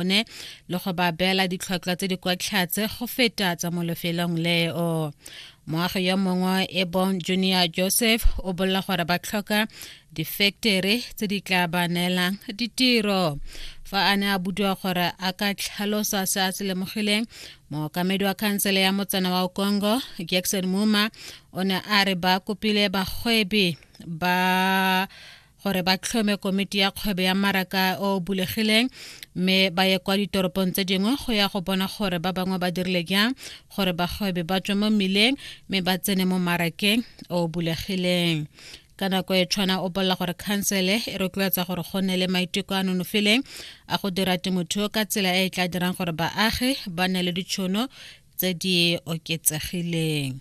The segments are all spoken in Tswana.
bone le go ba beela ditlhwatlhwa tse di kwa tlhatse go feta tsa mo lefelong leo moagi yo mongwe e bong junior joseph o bolela gore ba tlhoka difektere tse di tla ba neelang ditiro fa a ne a budiwa gore a ka tlhalosa se a se lemogileng mookamedi wa khansele ya motsana wa okongo jackson muma o ne a re ba kopile bagwebi ba gore ba tlhome komiti ya kgwebo ya maraka o bulegileng mme ba ye kwa ditoropong tse dingwe go ya go bona gore ba bangwe ba dirile jang gore bagwebi ba tswe mo mmileng mme ba tsene mo marakeng o bulegileng ka nako e tshwana o bolela gore khansele e rotloetsa gore go nne le maiteko a nonofileng a go dira temothuo ka tsela e e tla dirang gore baagi ba nne le ditšhono tse di oketsegileng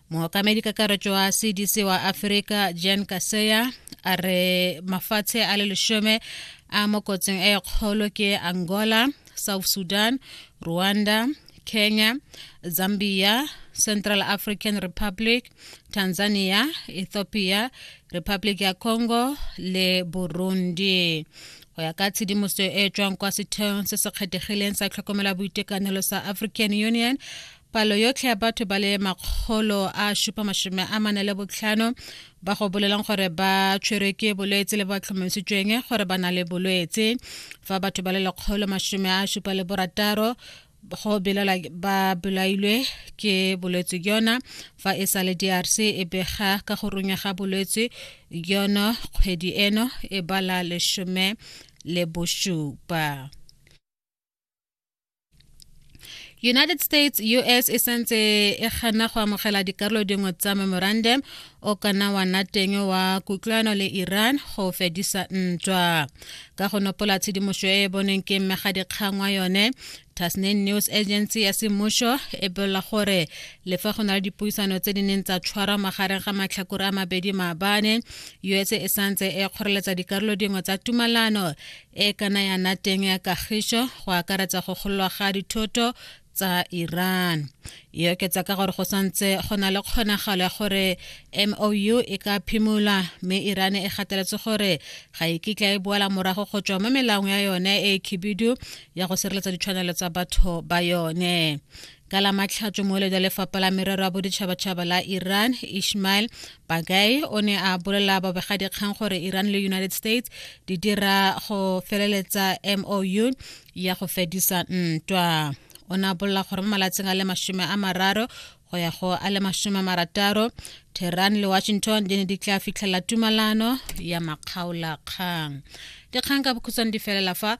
mookamedi kakaretso wa cdc wa aforika jan kaseya a re mafatshe a le lesome a mo kotsing e kgolo ke angola south sudan rwanda kenya zambia central african republic tanzania ethiopia republic ya congo le burundi go ya ka tshedimosetso e tswang kwa setheong se se kgethegileng sa tlhokomela boitekanelo sa african union Palo yotlhe ya batho ba le makgolo a supa masome a mane le botlhano ba go bolelang gore ba tshwerwe ke bolwetse le ba tlhomamisitsweng gore ba na le bolwetse fa batho ba le lekgolo masome a supa le borataro go belela ba belailwe ke bolwetse jona fa e sa le drc e bega ka go runya ga bolwetse jono kgwedi eno e bala lesome le bosupa united states us e santse e gana go amogela dikarolo dingwe tsa memorandum o kana wa nna teng wa kutlwano le iran go fedisa ntwa ka go nopola tshedimošo e e boneng ke mmegadikgang wa yone tasnin news agency ya semmušo e bolela gore le fa go na le dipuisano tse di neng tsa tshwarwa magareng ga matlhakore a mabedi maabane us e santse e kgoreletsa dikarolo dingwe tsa tumalano e kana ya nna teng ya kagišo go akaretsa go gololwa ga dithoto tsa iran e oketsa ka gore go santse go na le kgonagalo ya gore mou e ka phimolwa mme iran e gateletse gore ga e kitla e boela morago go tswa mo melaong ya yone e khibidu ya go sireletsa ditshwanelo tsa batho ba yone ka la matlhatso moeledi wa lefapha la merero ya boditšhabatšhaba la iran ishmael bagai o ne a bolela babegadikgang gore iran le united states di dira go feleletsa mou ya go fedisa ntwa o ne a bolela gore mo malatsing a le masome a mararo go ya go a le masome a marataro tehran le washington di ne di tla fitlhelela tumalano ya makgaolakgang dikgang ka bokhutshwane di felela fa